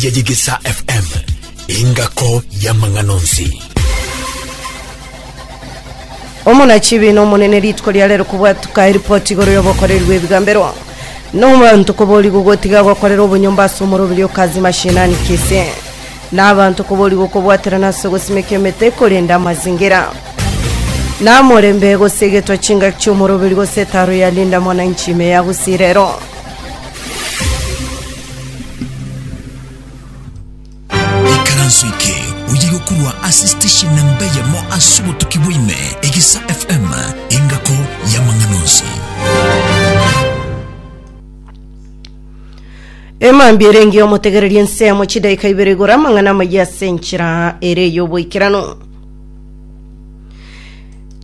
ya Yegesa FM, engako y'amang'ana onsi. Omonachibi na omonene rituko ria rero kobwatuka eripoti igoro y'obokoreri bw'ebigambero na abanto koborigwa gotiga gokorera obonyomba ase omoroberi o kazi mashinani kisi na abanto koborigwa kobwaterana ase ogosimeka emete korenda amazingira na morembe gose egetwa chingaki chi'omoroberi gose etaro ya linda mwananchi ime ya gusirero ikaranso eke oye gokurwa ase station na mbe yamo ase obotuki bwaime egisa fm engako y'amang'ana onsi emambi erenge omotegereria ensemo chidaika ibere igora amang'ana amaya ase enchera ere y'oboikeranu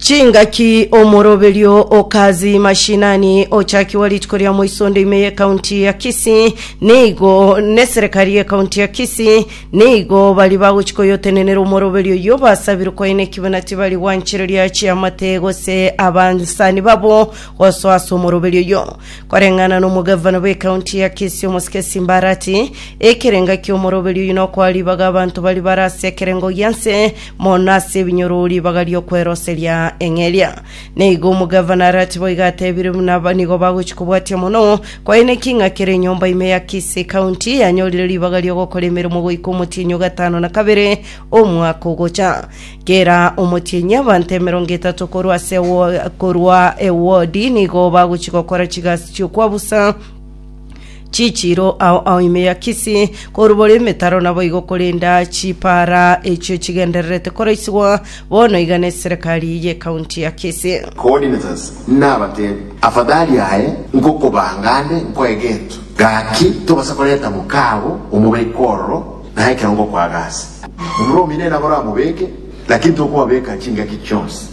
Chingaki omoroberio o Kazi Mashinani ochakigwa rituko ria moiso onde ime y'ekaunti ya Kisii nigo neserekari y'ekaunti ya Kisii nigo bari bagochi koyotenenera omoroberio yo basabirwe kwaina ekibina tibari gwanchereria chiamate gose abansani babo gosoa ase omoroberio yo koreng'ana n'omogavana bw'ekaunti ya Kisii omosike Simbarati ekerenga ki'omoroberio oyu nokoa ribaga abanto bari bare ase ekerengo gianse Mono ase ebinyorori bagarie okweroseria eng'e eria. Na igo omogavana Arati boigo atebirie buna aba nigo bagochia kobwatia mono, kwaine ki ng'a kera enyomba ime ya Kisii County yanyorire ribaga ri'ogokora emeremo goika omotienyi o gatano na kabere omwaka ogocha. Kera omotienyi abanto emerongo etato korwa ase ewo- korwa ewodi nigo bagochia gokora chigasi chi'okwabusa Chichiiro ao ao ime ya Kisi, korubora emetaro naboigo korenda chipaara echio chigendererete koraisigwa, bono iga neserekari y'ekaunti ya Kisi. Coordinators nabatebi afadhali aye nkokobanga ande nkoe gento gaki tobasa koreta mokaago omobeke ororo na ekero ngokoaga ase omura omino enabora amobeke lakini tokobabeka chingaki chionsi.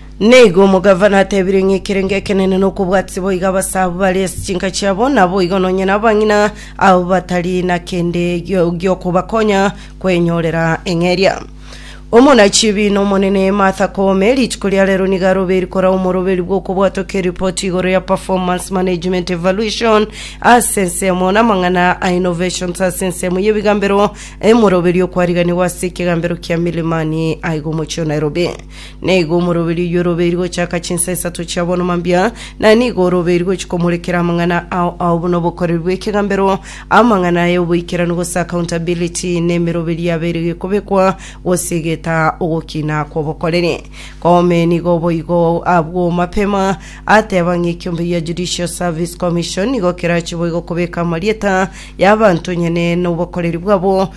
Nigo omogavana atebirie ng'a ekerengo ekenene nokobwatisa boigo abasaabu bare ase chinka chiabo, naboigo nonye nabang'ina abo batari na kende gio- giokobakonya kwenyorera eng'eria. Omonachi ebi n'Omonene Martha Koome rituko ria rero nigo arobeiri korao omoroberi bw'okobwata oke eripoti igoro ya Performance Management Evaluation ase ensemo namang'ana a Innovations ase ensemo y'ebigambero, emoroberi okwariganigwa ase ekegambero kia Milimani aiga omochie o Nairobi. Na igo omoroberi oyio orobeiri gochaka chinsa isato chia bono mambia, na nigo orobeiri gochia komorekera amang'ana ao ao buna obokoreri bw'ekegambero, amang'ana aye oboikeranu gose accountability, na emeroberi yabeire gekobekwa gose egetaa ogokina kw'obokoreri. Koome nigo oboigo abwo mapema ateba ng'a ekiombe gia Judicial Service Commission nigo kerachie boigo kobeka amarieta y'abanto onye ne n'obokoreri bwabo,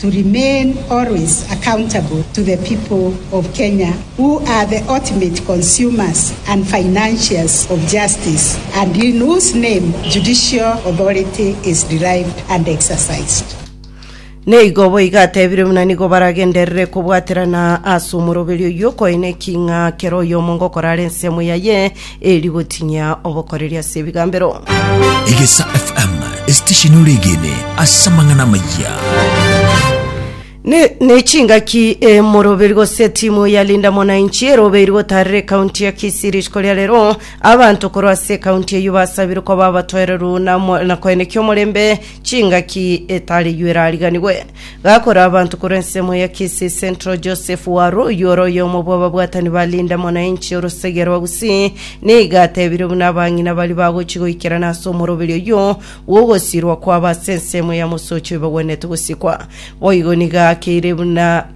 to remain always accountable to the people of Kenya who are the ultimate consumers and financiers of justice and in whose name judicial authority is derived and exercised. Na igo boigo atebirie buna nigo baragenderere kobwaterana ase omoroberio oyio, koine ki ng'a kera oyomo ngokora are ensemo yaye, Eri gotinyia obokoreri ase ebigambero. Egesa FM, esitesheni ore egene ase amang'ana amayia. Ne, ne chingaki e moroberi gose timu ya Linda Mwananchi eroberi gotarera ekaunti ya Kisii rituko ria rero abanto korwa ase ekaunti eyio basabirwe koba abatoereru na, mo- na koenekia omorembe chingaki etari eyio erariganigwe. Gakora abanto korwa ensemo ya Kisii Central Joseph Waru oyio ore oyomo bw'ababwatani ba Linda Mwananchi orosegea rwa Gusii nigo atebire buna abang'ina baria bagochi goikerana ase omoroberi oyio bw'ogosirwa kwabo ase ensemo ya Mosocho ibagwenerete gosikwa. Boigo nigo akeire buna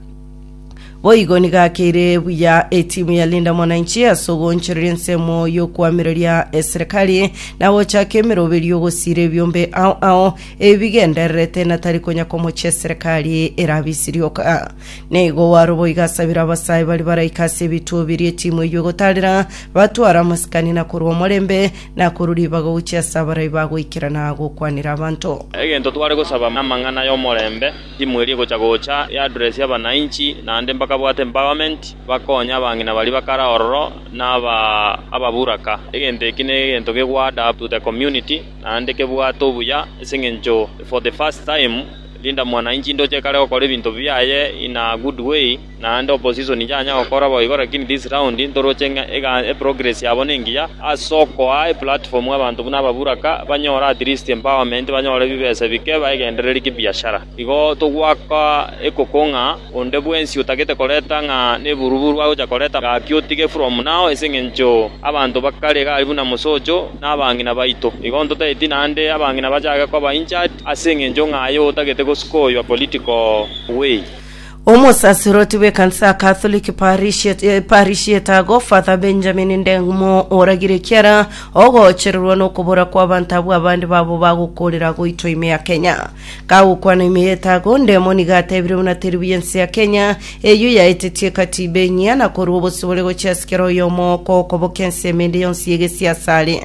Boigo nigo akeire buya etimu ya Linda Mwananchi ase ogoonchoreria ensemo y'okoamereria eserekari na gochaka emeroberio y'ogosiira ebiombe ao ao ebigendererete na tari konya komochia eserekari erabe isirioka. Nigo Waruboiga asabire abasae baria baraika ase ebituo biria etimu eyio egotaarera batware amasikani na korua omorembe na korwa ribaga gochia ase abarai bagoikerana gokwanera abanto. Egento tware gosaba namang'ana y'omorembe Timu eria egocha gocha e address ya abanainchi naende mbakabwate empowerment bakonye abang'ina baria bakare ororo na ababuraka. Egento eki negento ke go add up to the community naende kebwate obuya ase eng'encho for the first time Linda Mwananchi indoche kare gokora ebinto biaye in a good way. Naende opposition inchanya gokora boigo lakini this round ntoroche ng'a ega- eprogress yabo nengiya ase okoa eplatform abanto buna ababuraka banyore at least empowerment banyore bibesa bike baegendererie kibiashara. Igo togwaka ekoko ng'a onde bwensi otagete koreta ng'a neburuburu agocha koreta gaki otige from now ase eng'encho abanto bakare iga aria buna mosocho na abang'ina baito. Igo ntotageti naende abang'ina bachake koba injured ase eng'encho ng'a aye otagete gosukoywa political way. Omosaseroti bw'ekansa ya Katholiki parish ya- eh, parish y'Etago, Father Benjamin Ndeng'umo, oragire ekiara ogochererwa nokobora kw'abanto abwo abande babo bagokorera goitwa ime ya Kenya. Kagokwana ime y'Etago, Ndemo nigo atebire buna teribu y'ense ya Kenya eyio yaeteti ekatiba enyia na korua obosibore gochia asikera oyomo okokoboka ense emende yonsi y'egesiasa are.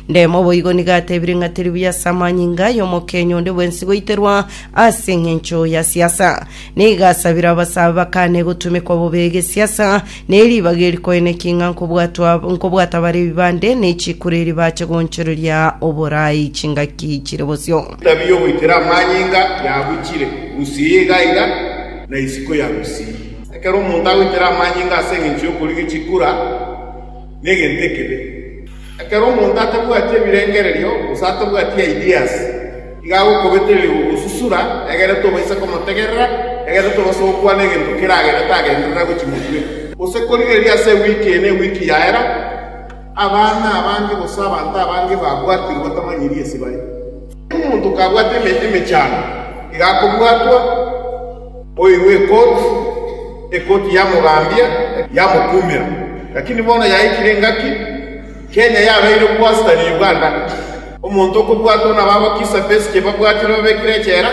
Ndemo boigo nigo atebire ng'a teri buya ase amanyinga y'omokenyi onde bwensi goiterwa ase engencho ya siasa. Nigo asabire abasabe bakane gotumekwa bobe egesiasa, ne ribaga eri koene ki ng'a nkobwatwa nkobwata bare ebibande ne chikura eri bache goonchoreria oboraai chingaki chire bosio. Etabia y'ogoitera amanyinga yabuchire Gusii iga iga na isiko ya Gusii. Ekero omonto agoitera amanyinga ase engencho y'okorigia chikura, negento ekebe. Ekero omonto atabwati ebirengererio, gose atabwati ideas, iga agokobetereria gogosusura, egere tobaisa komotegerera, egere tobaisa gokwana egento kera gento tagenderera gochia motwe, gose korigereria ase ewiki eye na ewiki yaera, abana abange gose abanto abange babwatirwe batamanyiri ase bare. Omonto kabwate emechando iga akobwatwa, oirwe ekoti, ekoti yamogambia, yamokumera. Lakini bono yaikire engaki, Kenya yabeire obwasita ne Uganda. Omonto okobwatwa nabo abakisa b'esike babwatire babekire echela,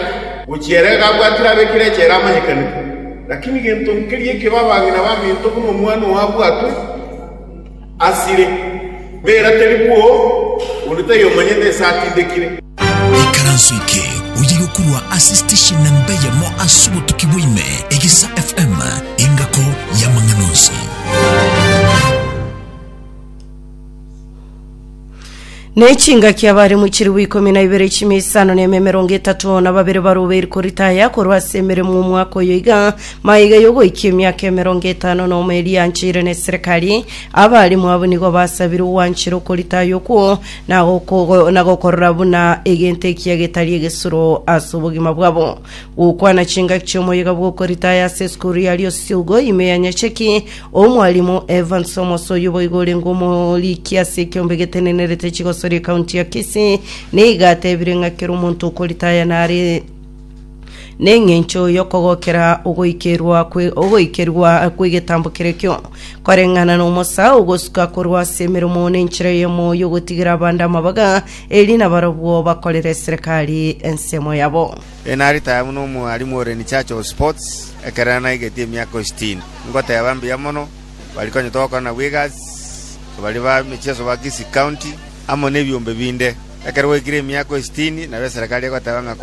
gochia ere iga abwatire abekire echela amanyekanigwe. Lakini gento nkeria ekebe abang'ina baminto buna omwana oo abwatwe. Asire, bera teri bwoo, onde taiyo omanyete ase atindekire. Ikaranso eke oye gokurwa ase station namba eyemo ase obotuki bwa ime, Egesa FM, engako y'amang'ana onsi. Ne chingaki abaremu chilifu ikomi na ibere chimia isano na emia emerongo etato na babere barobeiri koritaya korwa ase emeremo omwaka oyo iga maiga yogoikia emiaka emerongo etano na omo eria yancheire neserekari abaremu abo nigo basabire ogwanchera okoritaya okwo na goko- na gokorora buna egento ekiya getari egesuro ase obogima bwabo gokwana chingaki chiomoyega bwokoritaya ase esukuru ya Liosiogo ime ya Nyacheki Omwalimu Evans Omos oyio boigo orenge omoriki ase ekiombe getenenerete chigosori ekaunti ya Kisii nigo atebire ng'a kera omonto okoritaya nare neng'encho yokogokera ogoikerwa kwe ogoikerwa kwegetambo kerekio koreng'ana nomosa ogosuka korwa ase emeremo nenchera eyemo yogotigera abande amabaga eri nabarobwo bakorere eserekari ensemo yabo. Enari taya buna omwarimu ore in charge of sports ekerero naigetie emiaka isitini. Ngoteba mbuya mono, bari konya togokora nabo egasi, bari ba emechieso ba Kisii County, amo nebiombe binde. Ekero gwaikire emiaka isitini, nabo eserekari egoteba ng'a kwa.